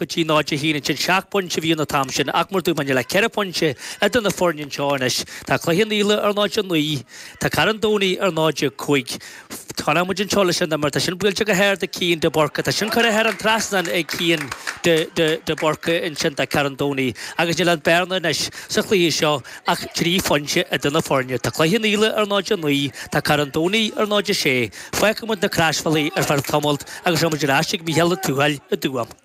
go dtí 0 a haon ansin. Seacht bpointe a bhí ann an t-am sin ach mar a dúirt mé níl ach ceithre phointe eadar na foirne anseo anois. Tá Cloich Cheann Fhaola ar 0 a naoi, tá Carn Domhnaigh ar 0 a cúig. Fanann muid anseo leis an imirt. Tá sin buailte go hard ag Cian de Burca. Tá sin curtha thar an trasnán ag Cian de Burca ansin do Carn Domhnaigh agus níl an bearna anois sa chluiche seo ach trí phointe eadar na foirne. Tá Cloich Cheann Fhaola ar 0 a naoi, tá Carn Domhnaigh ar 0 a sé. Fágfaidh muid na Croisbhealaí ar feadh tamaill agus seo muid ar ais ag Mícheál Ó Tuathail i dTuaim.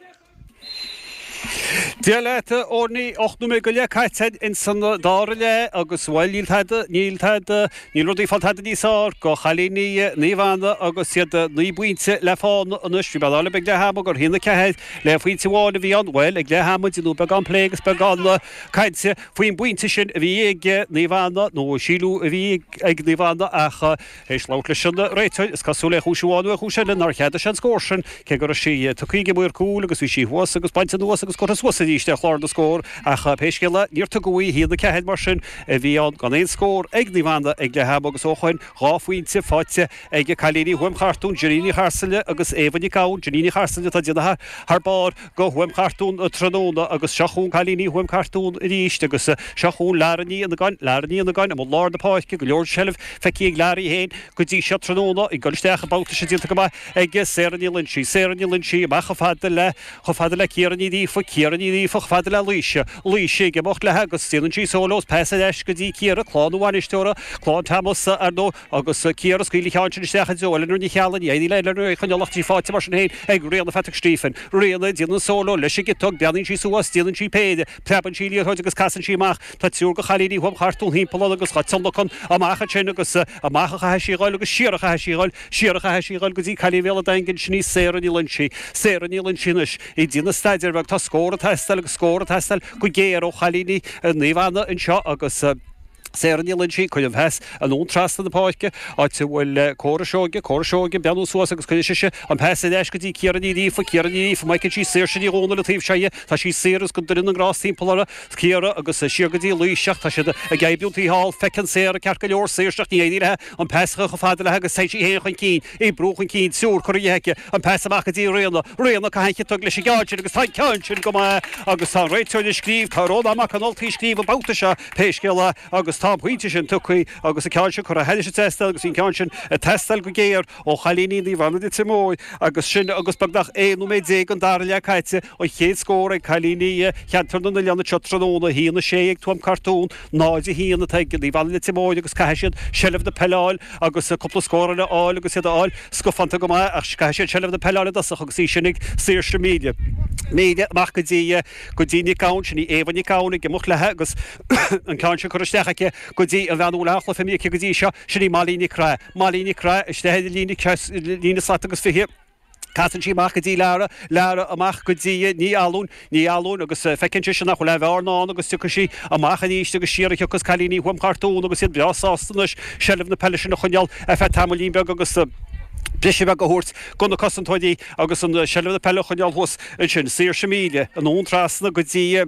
Dia leat, a Orni. Ocht nóiméad go leith caite ins an dara leath, agus, bhuel, níl tada, níl tada, níl rudaí ag fáil tada níos fearr do chailíní Naomh Anna agus iad naoi bpointe le fána anois. Bhí mearbhall beag ag leath ama, a haon a ceathair le pointe amháin a bhí ann, bhuel, ag leath ama, bhí beagán plé agus beagán cainte faoin bpointe sin a bhí ag Naomh Anna, nó a síleadh a bhí ag Naomh Anna ach, éis labhairt leis an réiteoir, is cosúil, ar chúis amháin nó ar chúis eile, nár cheadaigh sé an scór sin, cé go raibh sí tugtha ag an maor cúil agus bhí sí thuas agus bainte anuas agus curtha suas arís ar chlár na scór, ach pé scéal é, níor tugadh í, a haon a 4, mar sin, a bhí ann gan aon scór ag Naomh Anna ag leath ama agus ó shoin, dhá phointe faighte ag cailíní Thuaim Chartún, Jenny Ní Charsaile agus Éabha Nic Gabhann, Jenny Ní Charsaile atá ag déanamh thar barr. do Thuaim Chartún tráthnóna agus seo chugainn cailíní Thuaim Chartún arís agus seo chugainn Larry Ní Fhionnagáin Larry Ní Fhionnagáin i mbun lár na páirce, go leor seilbh feicthe ag Larry féin go dtí seo tráthnóna, ag dul isteach an babhta seo déanta go maith ag Sarah Ní Loinsigh Sarah Ní Loinsigh amach chomh fada le, chomh fada le Ciara Ní Ghríofa Ciara Ní Ghríofa chomh fada le Laoise, Laoise ag imeacht léi agus déanann sí solo is pas ar ais go dtí Ciara, clann an bhainisteora, Clann Thomas, ar ndóigh. agus Ciara ag scaoileadh an cheann sin isteach i dtreo Eleanor Ní Cheallaigh, Ní Fhaoileadh, Eleanor ní choinneoidh sí, faighte mar sin féin ag Ríona Phatrick Stephen, Ríona, déanann solo leis an gciotóg, breathnaíonn sí suas, déanann sí péire, preabann sí an liathróid agus casann sí amach, tá triúr de chailíní Thuaim Chartún timpeall uirthi agus tionlacan amach ansin agus amach a chaithfidh sí a dhul agus siar a chaithfidh sí a dhul, siar a chaithfidh sí a dhul go dtí cailín Bhéal an Daingin, sin í Sarah Ní Loinsigh, Sarah Ní Loinsigh anois ag déanamh staidéar beag, tá scór ag teastáil agus scór ag teastáil go géar ó chailíní Naomh Anna anseo agus. Sarah Ní Loinsigh, cuireann an pas anonn trasna na páirce, áit a bhfuil Córa Seoige, Córa Seoige, ag breathnú suas agus cuireann sise an pas ar ais go dtí Ciara Ní Ghríofa, Ciara Ní Ghríofa, má fheiceann sí Saoirse Ní Dhomhnaill, an taobh seo dhe, tá sí saor agus go dtuireann an rás timpeall uirthi, Ciara agus siar go dtí Laoise ach tá siad ag oibriú taobh thall, feiceann Sarah ceart go leor Saoirse ach ní éiríonn léi an pas a chur chomh fada léi agus téann sí féin chun cinn. ag brú chun cinn triúr curtha dhi aici, an pas amach go dtí Ríona, Ríona caitheann an chiotóg leis an gceann sin agus tá an ceann sin go maith agus tá an réiteoir ag scríobh, tá Rónán Mac an Ultaigh ag scríobh an babhta seo pé scéal é agus tá an pointe sin tugtha agus an ceann sin curtha thairis ag teastáil agus bhí an ceann sin ag teastáil go géar ó chailíní Naomh Anna Leitir Móir agus sin agus beagnach 11 nóiméad den dara leath caite. An chéad scór ag cailíní Cheantar na nOileán anseo tráthnóna, 1-6 ag Tuam Cartún, 0-1 atá ag Naomh Anna Leitir Móir agus caithfidh siad seilbh na peile a fháil agus cúpla scór eile a fháil agus iad a fháil scafánta go maith ach caithfidh siad seilbh na peile a fháil i dtosach agus í sin ag Saoirse Míle amach go dtí Nic Gabhann, sin í Éabha Nic Gabhann ag imeacht léi agus an ceann sin curtha isteach aici go dtí an bhean a bhfuil an-chluiche imrithe aici go dtí seo, sin í Molly Nic Craith. Molly Nic Craith isteach ar an líne slat agus fiche. Casann sí amach go dtí Lara, Lara amach go dtí Ní Fhallúin, Ní Fhallúin agus feiceann sise nach bhfuil aon bheárna ann agus tiocfaidh sí amach aríst agus siar a thiocfas cailíní Thuaim Chartún agus iad breá sásta anois seilbh na peile sin a choinneál ar feadh tamaillín beag agus briseadh beag a thabhairt go na cosantóirí agus an seilbh na peile a choinneál thuas ansin. Saoirse Míle anonn trasna go dtí.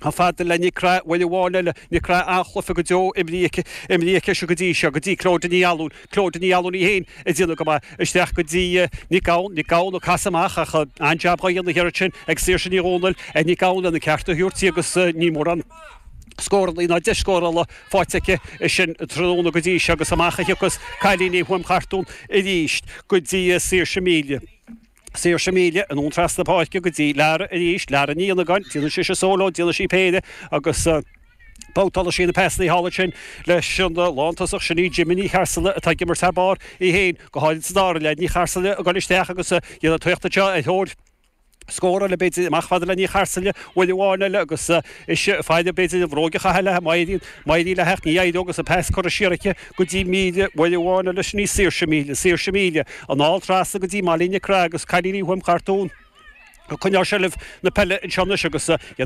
Chomh fada le Nic Craith, buille amháin eile, Nic Craith an-chluiche go deo imrithe aici sin go dtí seo, go dtí Clóda Ní Fhallúin, Clóda Ní Fhallúin í féin ag déanamh go maith, isteach go dtí Nic Gabhann, Nic Gabhann ag casadh amach ach an-jab dhá dhéanamh thiar ansin ag Saoirse Ní Dhomhnaill, ar Nic Gabhann lena ceart a thabhairt di agus níl mórán scóranna ná deis scórála faighte aici sin tráthnóna go dtí seo agus amach a thiocfas cailíní Thuaim Chartún arís go dtí Saoirse Míle. Saoirse míle anonn trasna páirce go dtí Lara arís, Lara Ní Fhionnagáin, déanann sise solo, déanann sí péire agus babhtálann sí na peasanna thall ansin leis an lántosach Sinéad Jimmy Ní Charsaile atá ag imirt thar barr, í féin go háirid sa dara leath, Ní Charsaile ag goil isteach agus ag déanamh tíocht anseo ar thóir scór eile b'fhéidir, amach fada le Ní Charsaile, buille amháin eile agus ise faoi réir b'fhéidir an bhróg a chaitheamh léi má éiríonn léi ach ní éireoidh agus an pas curtha siar aici. go dtí míle, buille amháin eile, sin í Saoirse Míle, Saoirse Míle, anall trasna go dtí Molly Nic Craith agus cailíní Thuaim Chartún ag coinneáil seilbh na peile anseo anois agus iad